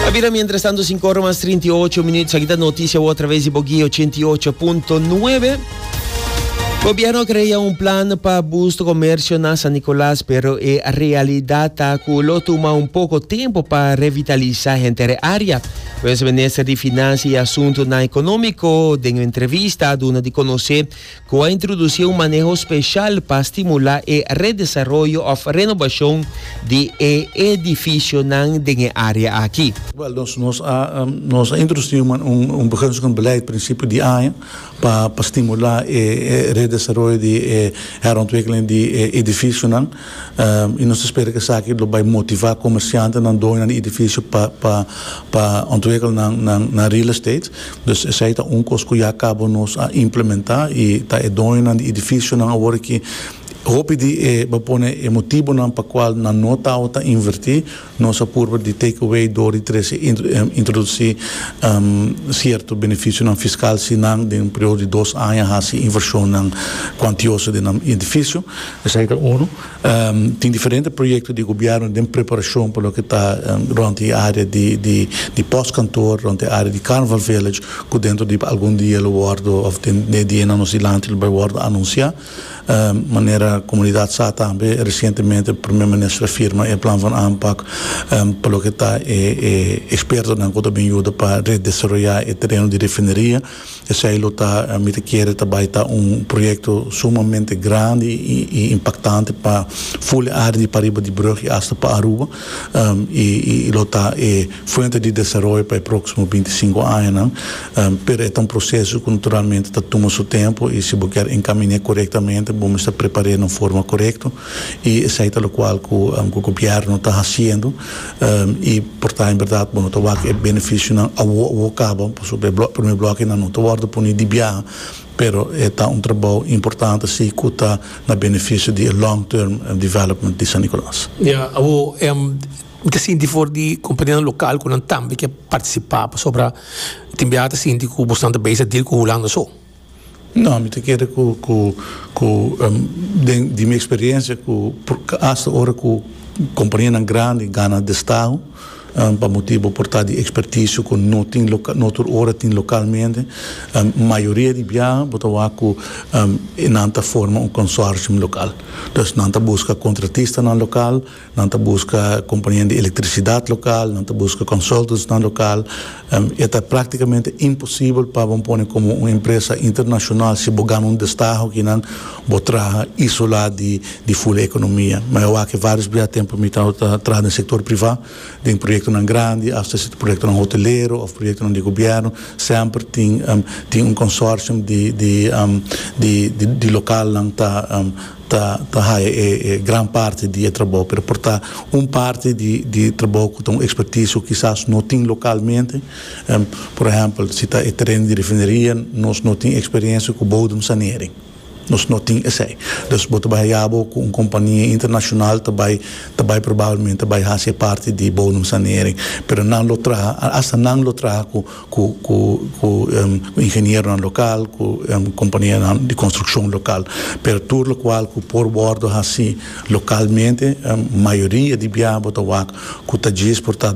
A bira mientras tanto 5 ora mas 38 minutos. Aquí está noticia a través de Boguí 88.9. Gobierno crea un plan pa boost comercio na San Nicolás, pero e realidad ta cu lo tuma un poco tempo pa revitaliza henter area. Pues minister di Financia y Asuntonan Economico den entrevista a duna di conoce cu a introduci un maneho special pa stimula e redesaroyo of renobacion di e edificionan den e area aki. Wel, nos, nos a, nos a introduci un, un begunstigend beleid principio di aña pa, pa stimula e, e redesaroyo di e herontwikkeling di e edificionan. I nos ta spera ku esaki lo bai motivá komersiantenan, doñonan di idifisio pa ontwikkel nan real estate. Dus esei ta un kos ku ya kaba nos a implementá i ta e doñonan di idifisionan awor aki hopi di e, bo a pone e motibonan pa kual nan no tabata invertí, Nos a purba di take away dor di trece introduci cierto beneficionan fiscal si nan den un periodo di dos aña haci inversionnan cuantioso den nan edificio. Esai ta uno. Tin diferente proyecto di gobierno den preparacion pa loke ta rond e area di post kantoor, rond e area di Carnival Village, cu dentro di algun dia lo wordo of den dianan nos dilanti lo bai wordo anuncia. Manera comunidad sa tambe, recientemente Primer Minister a firma e Plan van Aanpak pa loke ta e expertonan cu ta bin yuda pa redesaroya e tereno di refineria. Esey lo ta, mi ta kere, ta bay ta un proyecto sumamente grandi y impactante pa full e area di pariba di Brug y hasta pa Aruba. i lo ta e fuente di desaroyo pa e proksimo binti sinku añanan, pero e ta un proseso ku naturalmente ta tuma su tempu i si bo kier enkaminé korektamente bo mester prepar'é na un forma korekto i esei ta lokual ku Gobièrnu ta hasiendo i por ta en bèrdat bo no ta wak e benefisionan awo awo kaba pasobra e primer blòkenan no ta wòrdu puni di biaha. Pero e ta un trabou importante si cu ta na beneficio di e long term development di San Nicolas. Ya, awor em ta sinti for di compañeronan local cu nan tambe ke participa pasobra tin biaha ta sinti cu bosnan ta bezig deal cu Hulanda so. No, mi ta kere cu cu cu em den di mi experiencia cu hasta ora cu compañenan grandi gana destaho, Pa motibu por ta di ekspertiso ku no tin lokal, no tur ora tin lokalmente, mayoria di biaha bo ta wak ku nan ta forma un konsorsium lokal. Entonces nan ta buska kontratistanan lokal, nan ta buska kompania di elektrisidat lokal, nan ta buska konsultantsnan lokal, E ta práktikamente imposibel pa bo pone komo un empresa internashonal si bo gana un destaha okinan bo traha isolá di ful ekonomia. Mi a wak e vários bia tempu mi ta traha den sektor privá, den proyektonan grandi asta si ta proyektonan hotelero òf proyektonan di gobièrnu, semper tin tin un konsortium di di di lokalnan ta. ta haya e gran parti di e trabou, pero por ta un parti di trabou cu ta un expertise cu kisas no tin localmente. Por ehempel, si ta e terreno di refineria, nos no tin experiencia cu bodem sanering, nos no tin esey. Dus bo ta bay haya bo cu un compania internacional ta bay, ta bay probablemente ta bay haci e parti di bodem sanering, pero nan lo traha, hasta nan lo traha cu. cu cu ingenieronan local, cu companianan di construccion local, pero tur locual cu por wordo haci localmente, mayoria di biaha bo ta wak cu ta djis por ta.